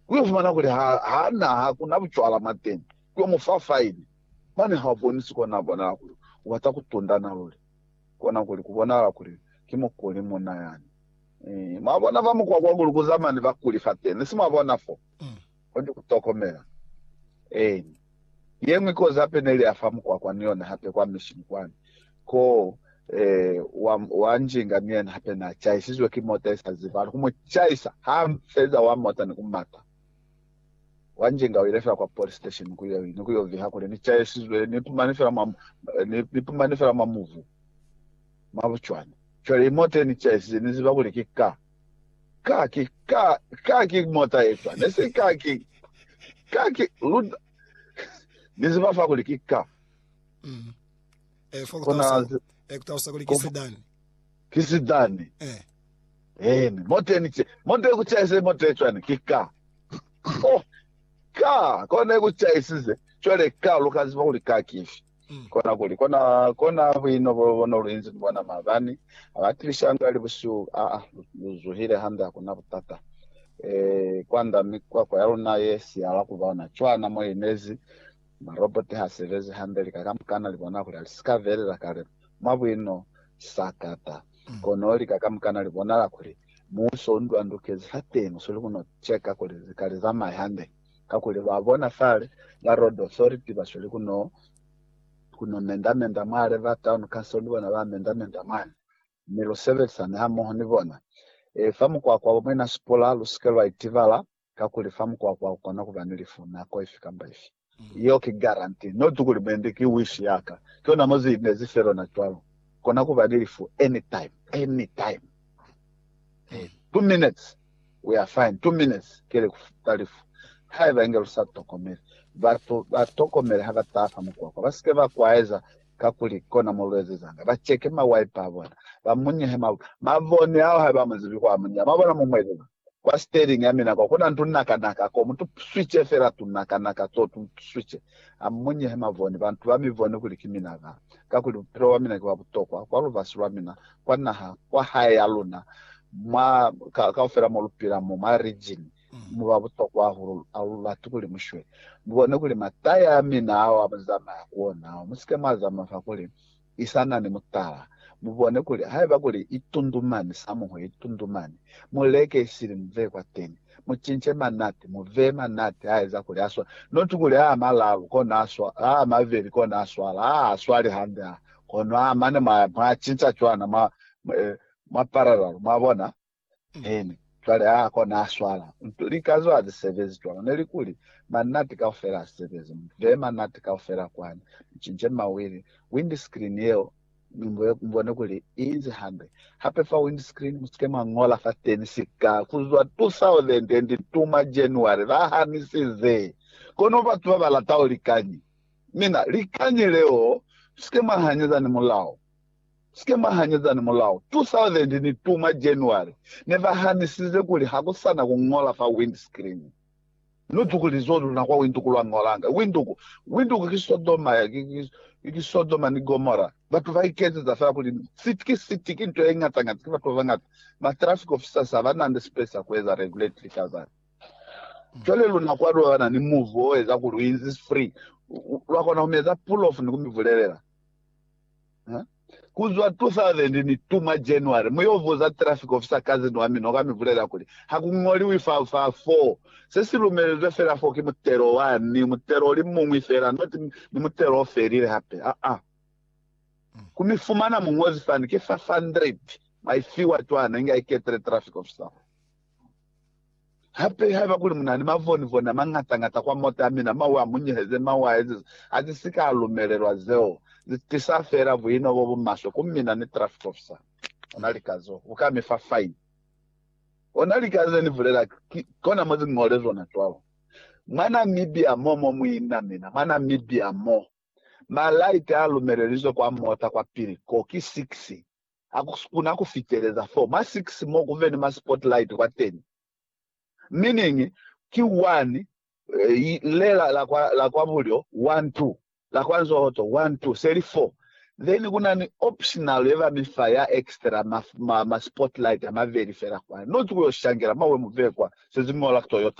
ku yo fumana kuli ha, ha na, ha ku na bucwala mwateñi, ku yo mu fa faini. Mane ha u bonisi kona a bonala kuli u bata ku tundana luli, kona kuli ku bonahala kuli ki mukuli munna yani. Ee, mwa bona, fa mukwa kwa ku lukuza mane bakuli fateni. Si mwa bona fo? Kuli ku tokomela. Eeni. Yeñwi kozi hape neli afa mukwakwa ni yona hape kwa mishini kwani, ko wa, wa njinga ni yena hape na chaisizwe ki mota isa zibali ku mu chaisa, ha feza wa mota ni ku mata. Wa njinga uile fela kwa police station ku yo, ni ku yo viha kuli, Ni chaisizwe, ni pumani fela mwa, ni, ni pumani fela mwa muvu, mwa bucwani. Cwale imota ye ni chaisize, ni ziba kuli ki car. Ka ki, ka, ka ki mota ye cwani? Ne si ka ki, ka ki, lu, Ni ziba fa kuli ki ka. Mm. Eh, fa Kona, kutalusa, eh, kutalusa kuli ki sedani. Ki sedani. Eh. Eni, mota ni che, mota ye kuchaise mota ye cwani? Ki ka. Oh, ka, kone kuchaisize. Cwale ka, lu ka ziba kuli ka kifi. Kona kuli, kona, kona bwino bo bona luinzi ni bona maabani, abatilishanga ali busihu, a, a, lu zuhile hande, hakuna butata. E, kwanda mi kwakwa ya luna ye siyala kuba ona cwana mo inezi, maroboti ha sebezi hande, lika kamukana li bona kuli alisika velela kale mwa bwino, sakata. Kono lika kamukana li bonala kuli muuso u ndwandukezi fateni, usweli kuno cheka kuli zika li zamaye hande. Kakuli lwa bona fale, ba Road Authority ba sweli ku no, ku no mendamenda mwale, ba Town Council ni bona ba mendamenda mwale, mi lu sebelisani hamoho ni bona. E, fa mukwakwa wo mwina sipula, lu si ke lwa itibala, kakuli fa mukwakwa ku kona ku ba ni lifu nako ifi kamba ifi. Yeo ki guarantee, not kuli mwendi ki wish ya ka. Ki ona mo zi inezi fe lona cwalo. Kona ku ba ni lifu anytime, anytime. Two minutes. We are fine. Two minutes kele ku futa lifu haiba inge lu sa tokomeli. Batu ba tokomele ha ba taha fa mukwakwa, ba si ke ba kwaeza kakuli kona mo lu ezezanga. Ba cheke ma wiper a bona, ba munyehe ma, mavoni ao haiba amu zibi kwa a munyeha. Mwa bona? Mu mu ezeza kwa steering ya mina kwa, kuna ni tunakanaka ko, mu tu switche fela tunakanaka to, tu tu switche. A mu munyehe mavoni, bantu ba mi bone kuli ki mina ka, kakuli bupilo bwa mina ki bwa butokwa kwa lubasi lwa mina kwa naha kwa hae ya luna mwa ka, kaufela mo lupila mo mwa region muba butokwa hahulu alulati kuli mushwe mubone kuli mataya amina ao amuzamaya kuona ao musike mwazama fa kuli isana ni mutala mubone kuli haiba kuli itundumani samuho itundumani muleke isili muve kwateni mucince manati muve manati aeza kuli aswa not kuli a malalu kona aswa a maveli kona aswala a aswali hande a Kono ha mane mwa, mwa cinca cwana, mwa, mwa, eh, mwa parallel, mwabona. Amen. Cwale ha ko na swala. Nto, lika zo ha zi sebezi cwalo. Ne li kuli, Manati kaufela a sebezi. Mu beye manati kaufela kwani. Mu cince mawili. Windscreen yeo, mi mu, mu bone kuli i inzi hande. Hape fa windscreen, mu sike mwa ñola fateni sika, kuzwa 2002 mwa January, ba hanisize. Kono batu ba ba lataho likañi? Mina, likañi leo, Sike mwa hanyeza ni mulao. Sike mwa hanyeza ni mulao. 2000 ni tuma January, ne ba hanisize kuli ha ku sa na ku ñola fa windscreen. Nu tuku lizoho luna kwa winduku lwa ñolanga. Winduku, winduku ki Sodoma, ki, ki, ki Sodoma ni Gomora. Batu ba iketseza fela kuli ni city, ki city, ki nto ye ñata ñata, ki batu ba bañata. Ma traffic officers ha ba na ni space ya ku eza regulatory ka zani. Cwale luna kwa lwa na ni muvu o eza kuli u inzi free, lwa kona ku mi eza pull off ni ku mi bulelela. Ha? Ku zwa 2002 mwa January, mu yo buza traffic officer cousin wa mina, u ka mi bulelela kuli, Ha ku ñoliwi fa, fa fo. Se si lumelezwe fela fo ki mutelo wa ni, mutelo o li muñwi fela, not ni mutelo o felile hape. Aa. Ku mi fumana muñozi fani, ki 500 mwa i fiwa cwana inge a iketele traffic officer. Hape haiba kuli munani mavonivoni amañata-ñata kwa mota yamina, mawe amunyeheze, mawe aezize azisika alumelelwa. Zeo zitisa feela buino bobumaswe ku mina ni traffic officer. Ona lika zo, uka mifa fine. Ona lika ze nibulela, ki kona mo ziñole zona cwalo. Mwa Namibia mo, mo muina mina, mwa Namibia mo, ma light alumelelizwe kwa mota kwapili ko ki 6. ha ku sukuna ku fiteleza fo mwa 6 mo ku beni mwa spotlight kwa teni. Meaning ki 1 y le la, la, kwa, la kwa bulyo 1 2 la kwa nzohoto 1 2 se li 4 then ku na ni optional ye ba mi fa ya extra ma, ma, ma spotlight a mabeli fela kwani. Not ku yo shangela mwa we mu bee kwa se ziñola Toyota.